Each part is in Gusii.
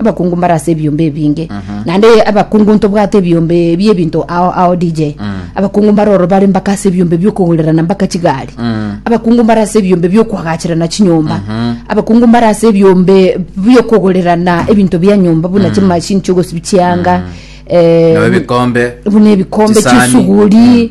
abakungu mbare ase ebiombe ebinge naende abakungu ntobwate ebiombe ebie ebinto ao ao dj abakungu mbare oro bare mpaka ase ebiombe biokogorerana mpaka chigari abakungu mbare ase ebiombe biokoagacherana chinyomba abakungu mbare ase ebiombe biokogorerana ebinto bia nyomba buna chimashini chiogosibi chianga eh, Nabo ebikombe, buna ebikombe chisani. chisuguri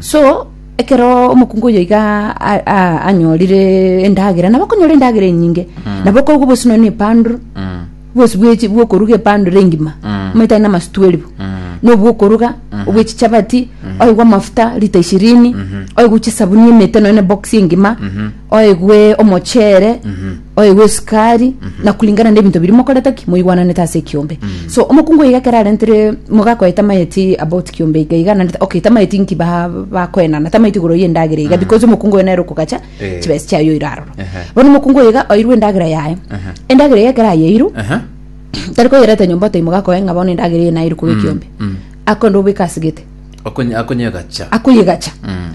so ekero omokungu oyo iga a- a- anyorire endagera nabo okonyora endagera enyinge nabo okorwa bosi nonya na epandro bosi bwechi bwokoruga epandro engima omanyete aye namasu twelve nobwokoruga obwe chichabati oigwe amafuta lita ishirini oigwe chisabuni emete nonya na ebox engima oigwe omochere oye gw'esukari na kulingana na ebinto biria mokorete ki moigwananete ase ekiombe so omokungu iga ekero arentire mogakoe tamageti about kiombe iga iga naende okay tamageti nki ba- bakoenana tamageti igoro y'endagera iga because omokungu oyo nere okogacha Eh. chibesa chiaye oira aroro Ehe. bono omokungu oyo iga oirwe endagera yaye Ehe. endagera iga ekero ayeirwe Aha. tari koyereta nyomba otai mogakoe ng'a bono endagera eye nairwe koba ekiombe mm. akonda obeka ase gete Akonye- akonyegacha akoyegacha Mm.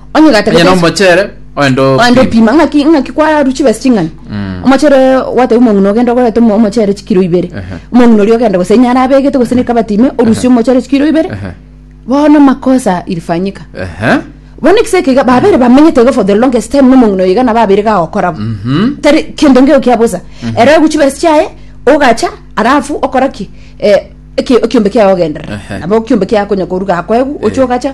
Onye Onye gatagete nomochere oende oende opime. opima ng'aki ng'aki kwaru chibesi ching'ani Mm. omochere gwateba omong'ina ogenda ogorete omo- omochere chikiro ibere Ehe. omong'ina oria ogenda gose inyara abegete gose ne kabati ime orusie omochere chikiro ibere Ehe. bono makosa ilifanyika Ehe. bono ekisa eke iga babere bamenyete iga for the longest time nomong'ina oyo iga nabo abere iga agokorabo Mhm. tari kendo ngeo kia bosa ere ogu chibesi chiaye ogacha arafu okora ki Eh, eki- ekiombe kiaye ogenderera Ehe. nabo ekiombe kiaye konya koruga akoegu oche ogacha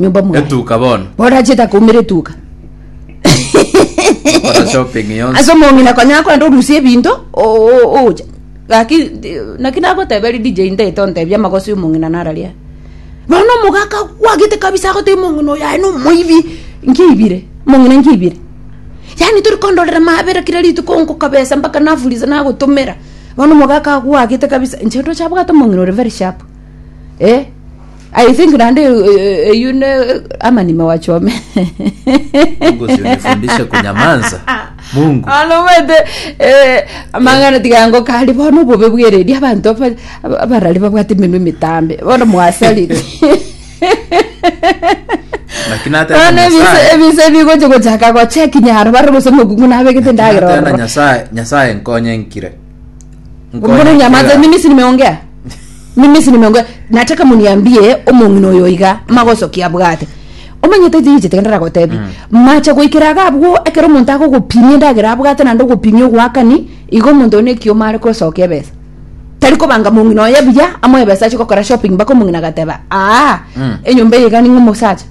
nyomba mwaye etuka bono borachete akoumera etuka gokora shopping yonsi ase omong'ina konya akorenda orusia ebinto o- o- ocha gaki naki nagoteberi dj ndete ontebi amagoso ya omong'ina nararia nonya omogaka kwagete kabisa agotebi omong'ina oyo aye nomoibi nkiibire omong'ina nkiibire yaani tori kondorera mabera kira rituko nkokabesa mpaka nafuliza nagotomera bono omogaka akwagete kabisa inche ndoche abwate omong'ina ore very sharp eh. I think naende eyu- eyu- eyu ne amanime wachome Mungu usinifundishe kunyamanza. Mungu. anomete amang'ana tigango kari bono obobe bwereri abanto aba- aba- abarari babwate emenwa emitambe bono mwasariri Lakini hata bono na ebise- Nyasaye. ebise bigocha gochaka gocheki nyaro bare gose mokungu nabegete Hata na ndagera Nyasaye, Nyasaye nkonye nkire. Mbona Nkonye nyamaze kera. mimi si nimeongea mimi si nimeongea nataka muniambie omong'ina oyo iga magosoki abwate omanyete jinji tigendera gotebi mache goikera iga abwo ekero omonto agogopimia endagera abwate naende ogopimia ogoakani igo omonto oyo nekioma are kosokia ebesa tari kobanga mong'ina oye buya amoe ebesa ache gokora shopping mpaka omong'ina agateba aa enyomba eye iga ning'e omosacha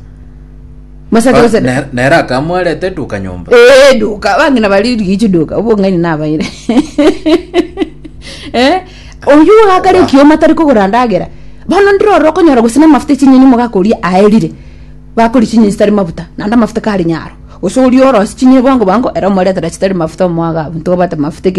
Mosake Ah, gose ne- nere akamwarete duka nyomba Eh, duka bange nabari rigichi duka obong'aini nabaire Eh, oyu wakare kioma tari kogora ndagera bono ndirore okonyora gose namafuta echinyeni mogakoria aerire bakori chinyeni chitari mafuta naende amafuta kari nyaro gose oria orosi chinyeni bwango bwango ere omoretere chitari mafuta omwaga abwo ntobate mafuta eke